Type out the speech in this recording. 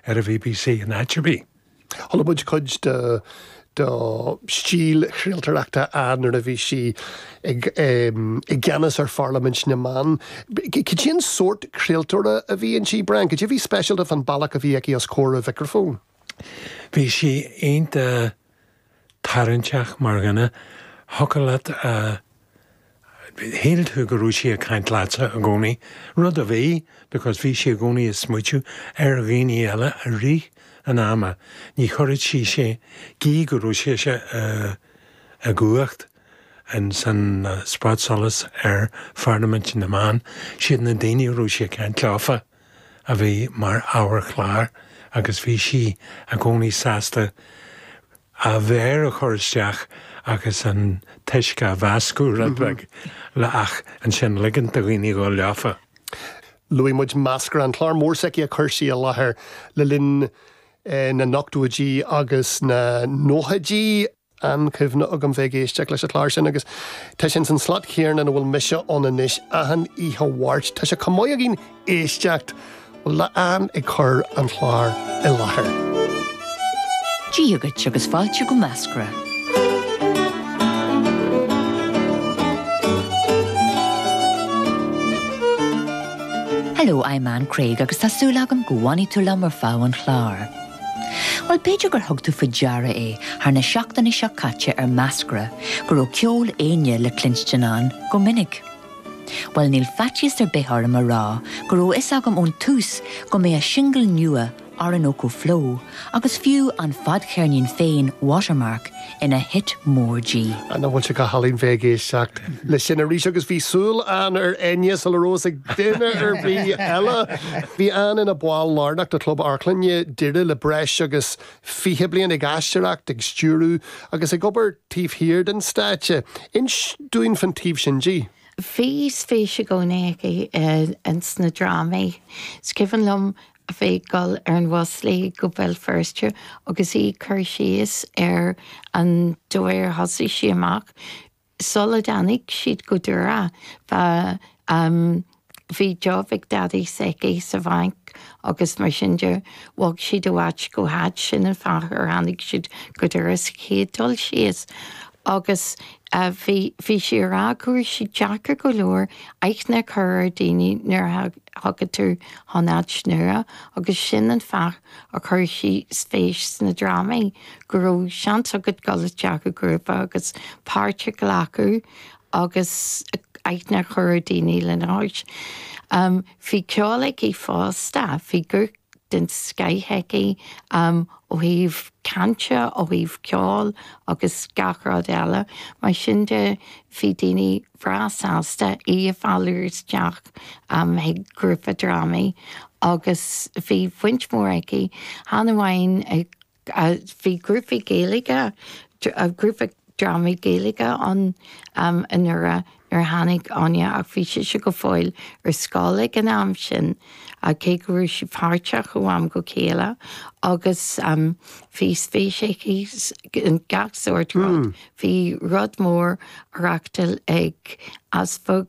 ar an bbc in áit ar bith. Chuala muid cuid de stíl chraoltóireachta Ann nuair a bhí sí i gceannas ar Pharlaimint na mBan. Cad é an sórt craoltóra a bhí inti, Brian? Cad é a bhí speisialta fán bealach a bhí aici os comhair an mhicreafóin? Bhí sí iontach tarraingteach mar dhuine, thiocfadh leat, shíl tú go raibh sí ag caint leatsa i gcónaí, rud a bhí because bhí sí i gcónaí ag smaoiteamh ar dhaoine eile i rith an ama, ní chuirfeadh sí, gí go raibh sise i, i gcumhacht in san spotsolas ar Pharlaimint na mBan, siad na daoine a raibh sí ag caint leofa. a bhí mar ábhar chláir agus bhí sí i gcónaí sásta a méar a chur isteach agus an t-uisce a mheascadh rud beag ach ansin ligint do dhaoine dhul leofa. Luaigh muid Meascra, an clár mór s'aici a chuir sí i láthair le linn na n-ochtóidí agus na nóchaidí. an-chuimhne agam bheith ag éisteacht leis an chlár sin agus tá sé ins an slot chéanna ina bhfuil mise ann anois achan oíche Mháirt. Tá sé chomh maith againn éisteacht le Ann ag cur an chláir i láthair. Dia dhuit agus fáilte go Meascra. Hello, I'm Ann Craig agus tá súil agam go bhfanfaidh tú liom ar feadh an chláir. Bhuel, b'fhéidir gur thug tú faoi deara é thar na seachtainí seo caite ar Meascra go raibh ceol Enya le cluinstin ann go minic. Bhuel, níl faitíos ar bith orm a rá go raibh fhios agam ón tús go mbeadh a singil nua Orinoco Flow agus fiú an fadcheirnín féin Watermark, ina hit mór di. Nach bhfuil sé galánta bheith ag éisteacht leis sin arís? Agus bhí súil Ann ar Enya sula raibh fhios ag duine ar bith eile. Bhí Ann ina ball lárnach de Chlub Amharclainne Doire le breis agus 20 bliain, ag aisteoireacht, ag stiúradh agus ag obair taobh thiar den stáitse. Inis dúinn fán taobh sin di. Bhí spéis i gcónaí aici sna drámaí. Is cuimhin liom a bheith ag dul ar an bhus léi go Béal Feirste agus í ag cur síos ar an dóigh ar thosaigh sí amach, Sula dtáinig siad go Doire, bhí, em, bhí job ag Daidí s'aici sa bhanc agus mar sin de bhog siad ó áit go háit, sin an fáth ar tháinig siad go Doire sa chéad dul síos. Agus, eh, bhí, bhí sí a rá go raibh sé deacair go leor aithne a chur ar dhaoine nuair a, Thiocfadh tú chun áit nua agus sin an fáth a chuir sí spéis sna drámaí, go raibh seans agat dul isteach i grúpa agus páirt a ghlacadh agus aithne a chur ar dhaoine lena chois. Bhí ceol aici fosta, bhí guth den scoith aici ó thaobh cainte, ó thaobh ceoil agus gach rud eile. Mar sin de bhí daoine breá sásta í a mhealladh isteach chuig grúpa drámaí agus bhí baint mhór aici chan amháin i, bhí grúpaí Gaeilge, grúpa drámaí Gaeilge ann an uair a nuair a tháinig Áine ach bhí sise go fóill ar scoil ag an am sin cé go raibh sí páirteach ó am go chéile agus bhí spéis aici in gach sórt rud. Bhí rud mór á reáchtáil ag easpag.